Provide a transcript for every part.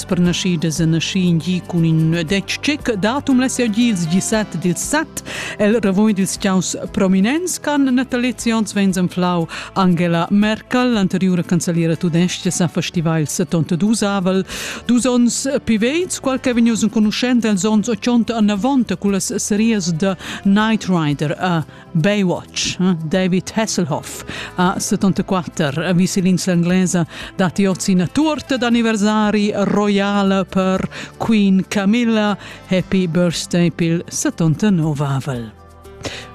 sparnaschidas e naschi in gi cun in detg tschec datum la sia dils 17 dil 7 el revoin dils chiaus prominents can natalizions vens anflau Angela Merkel anteriura cancelliera tudestga sa festiva il 72 avel dus ons piveits qual che vegnius enconuschent els ons 80 annavont con las series de Knight Rider a Baywatch, eh? David Hasselhoff, a 74, a viselinsa inglesa, dati ozi una torta d'anniversari royale per Queen Camilla, Happy Birthday pil 79avel.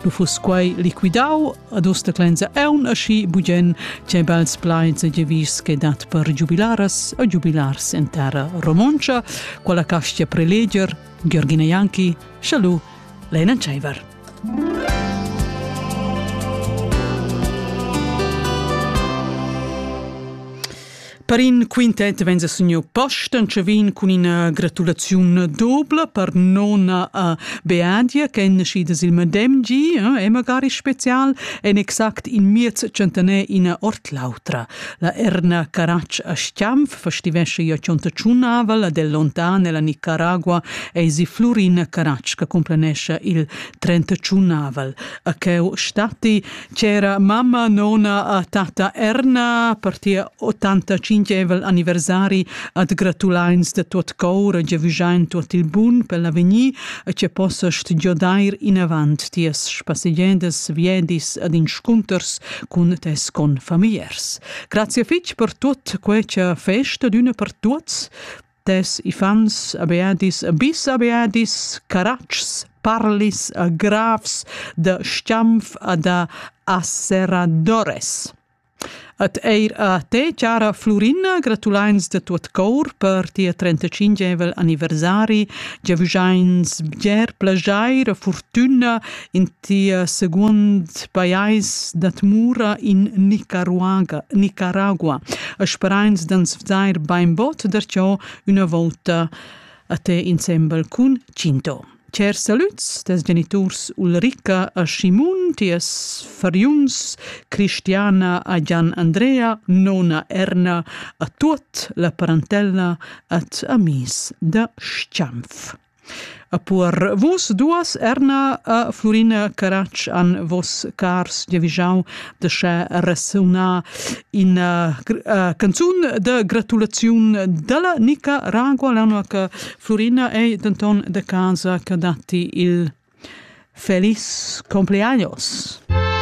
Lu fus quei liquidau ad usta clenza eun aschi bugen che bels plaids e gevis che dat per giubilaras e giubilars in terra romoncia, quella castia preleger Georgina Janki, Chalu, Lena Tscheiver. Per in quintet vegn a signur Posten che vegn cun ina gratulaziun dobla per nona a Beadia che è nascida sil medem gi e magari special en exact in miez centener ina ord l'autra. La erna Caratsch a Schianf festivesce io cionta tschunnavel ad el lontan ella Nicaragua eisi Flurina Caratsch che complenesce il 31avel. A cheu statti c'era mamma nona a tata Erna per tia 85evel anniversari ad gratulains de tuot cour e giavügiain tuot il bun per l'avegnir e che possast giodair inavant ties spassegendes viedis ad inscunters cun tes confamigliers. Grazie fitg per tut questa festa d'una per tuts. Tes ifans abeadis, bis abeadis, caraccs, parlis a grafs da Schiampf a da Asseradores. Et eir a te, cara Florina, gratulains de tuot cor per tia 35evel anniversari, giavüschains bger plagiair e fortüna in Tia secund pajais dat mura in Nicaragua, Nicaragua. Sperains d'ans vzair bainbot darcheu üna volta a te insembel cun Cinto. Cer salüts tes geniturs Ulrica a Simon, ties fariuns Cristiana a Gian Andrea, nona Erna, a tuot la parentella at amis da Schiampf. E per vos duas, Erna e Flurina Caratsch, han vos cars giavischau de sche resunar ina uh, canzun de gratulaziun dalla Nica Ragua, l'anno che Flurina è denton de casa che datti il feliz compleaños.